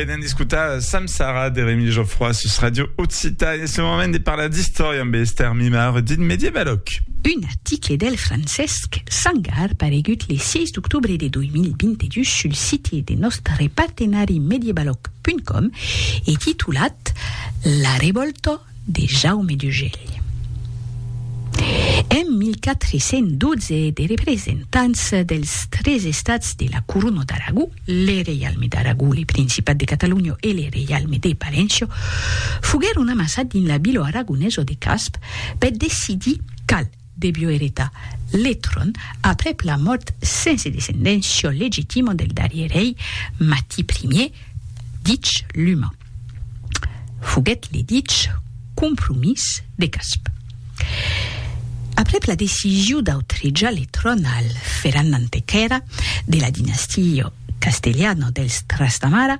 Benen d'escutar Sam Sara de Remi Geoffroy sus Radio Occita e ce moment de parlar d'istòria amb Esther Mimar dit Medievaloc. Un article del Francesc Sangar paregut le 6 d'octobre de 2022 sul site de nòstre partenari medievaloc.com e titulat La revòlta de Jaume d'Ugèlh. En 1412 de representants dels tres estats de la Corona d'Aragó, le Reialme d'Aragó, le Principat de Catalonha e le Reialme de Palenço, foguèron amassats dins la vila aragonesa de Casp per decidir qual debió eretar le tron aprèp la mòrt sense descendéncia legitima del darrier rei Mati Ier, dich Luma. Foguèt le dich compromís de Casp. Aprèp la decision d'autrejar le tron al Ferran Antequera de la dinastia castelhana dels Trastamara,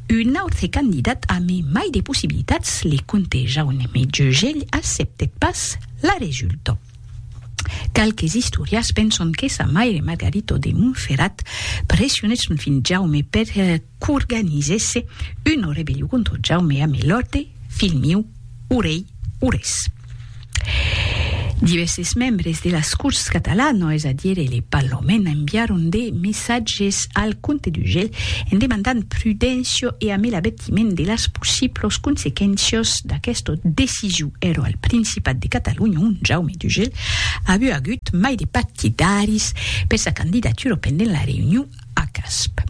un autre candidat amé mai de possibilitats, le comte Jaume Jegell, acceptèt pas La resulta. Qualques istorias penson que sa maire Margarito de Montferrat pressionèt son filh Jaume per qu'organizèsse una rebellion contra Jaume amé l'òrdre, Filh miu, o rei, o res. Divèrses membres de las Corts Catalanas, es a dire le Parlament, enviaron de messatges al comte d'Urgell en demandant prudéncia e amé la l'advertiment de las possiblos consequéncias d'aquesta decision ero al Principat de Catalonha ont Jaume Dugel aviá agut mai de partidaris per sa candidatura pendent la reünion a Casp.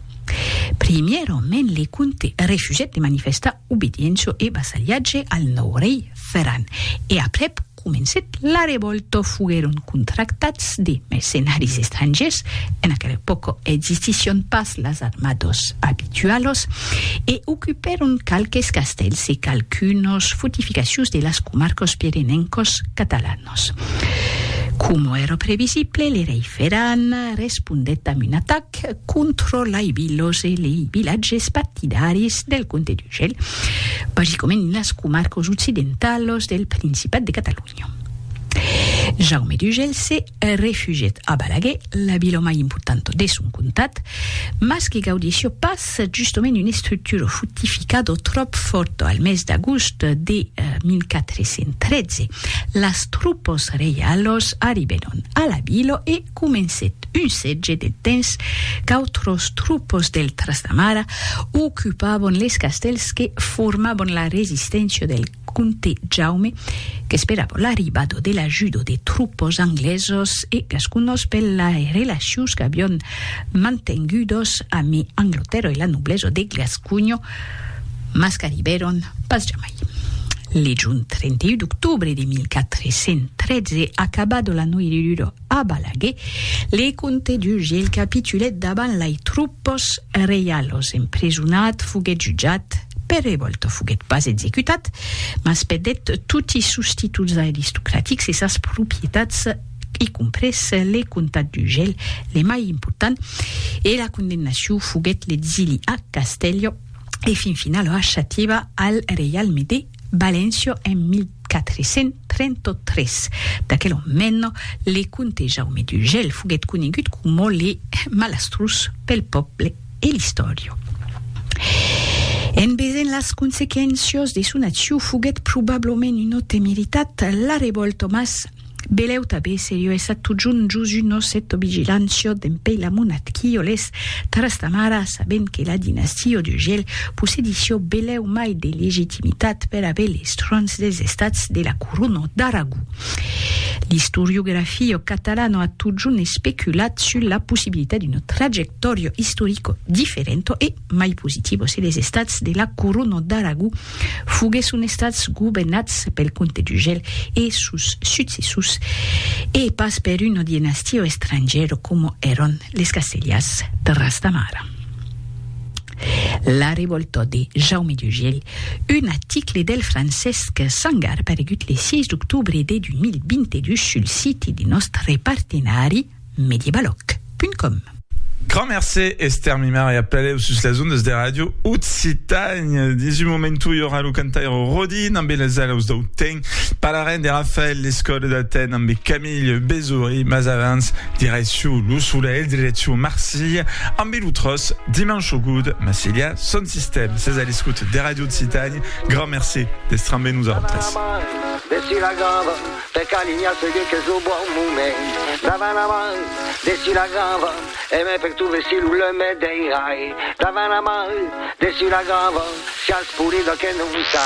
Primièrament le comte refusèt de manifestar obediéncia e vassalhatge al nòu rei Ferran e aprèp, Comencèt la revòlta foguèron contractats de mercenaris estrangièrs, en aquela epòca existission pas las armadas abitualas, e ocupèron qualques castèls e qualquunas fortificacions de las comarcas pirenencas catalanas. Coma èra previsible, le rei Ferran respondèt amb un atac, que controlaivi los e lei vilatges partidaris del comte d'Urgell, basicament las comarques occidentalas del Principat de Catalonha. Jaume d'Urgell se refugièt a Balaguer, la vila mai importanta de son comtat, mas que gaudissió pas justament una estructura fortificada tròp fòrta. Al mes d'agost de 1413, las tropas reialas arribèron a la vila e comencèt un sètge de temps qu'autros troupes del Trastamara ocupavan les castèls que formavan la resisténcia del comte Jaume qu'esperavan l'arribada de l'ajuda de troupes anglesas e gasconas per las relacions qu'avián mantengudas amé Anglatèrra e la noblesa de Gasconha mas qu'arribèron pas jamai. Le jorn 31 d'octobre de 1413, acabada la noirura A Balaguer, le comte du Gil capitulèt davant lai troupes reialos, emprisonat, foguèt jutjat, per revòlta foguèt pas executat, mas perdèt toti sos títols aristocratics e sas propietats, y compres le comtat du Gel, le mai important, e la condemnacion foguèt l'exili a Castèlho e fin finala a Xativa al reialme de. Valencio en 1433. D'aquel omeno, le comte Jaume d'Urgell foguèt conegut coma le malastrós pel pòble e l'istòriu. En vesent las consequéncias de son acciu foguèt probablament una temeritat, la revòlta mas Beleu tabé serieu e sat totjorn jos un osset o vigilant siot d'en pei la monat qui o les Tarastamara sabent que la dinastia o de gel possedi siot beleu mai de legitimitat per aver les trons des estats de la corona d'Aragó. L'istoriografia catalana a totjorn especulat sus la possibilitat d'una trajectòria istorica diferenta e mai positivos e les estats de la Corona d'Aragó foguèsson estats governats pel comte d'Urgell e sos successors e pas per una dinastia estrangèra coma èran les Castellars de Rastamara. La revòlta de Jaume d'Urgell, un article del Francesc Sangar paregut le 6 d'octobre de 2022 sul siti de nòstre partenari, mediebaloc.com. Grand mercé, Esther Mimar, e apelèu sus las ondas de Ràdio Occitània. Dins un momentu i aurà lo cantaire Rodin ambe las alaus dau temps, parlarem de Rafael Lescot d'Aten ambe Camille Bezory, mas avans, direcciu lo solelh, direcciu Marsilha ambe lo tròç Dimanche au Goût, Massilha son sistèm. Sètz a l'escòt de Ràdio Occitània, grand mercé d'èstre ambe nosautres. Per calinhar se dit qu'es lo bon moment Davant a mai, dessus la grava E mai per tu vestir lo leumet dei rai Davant a mai, dessus la grava Siás polida que non sai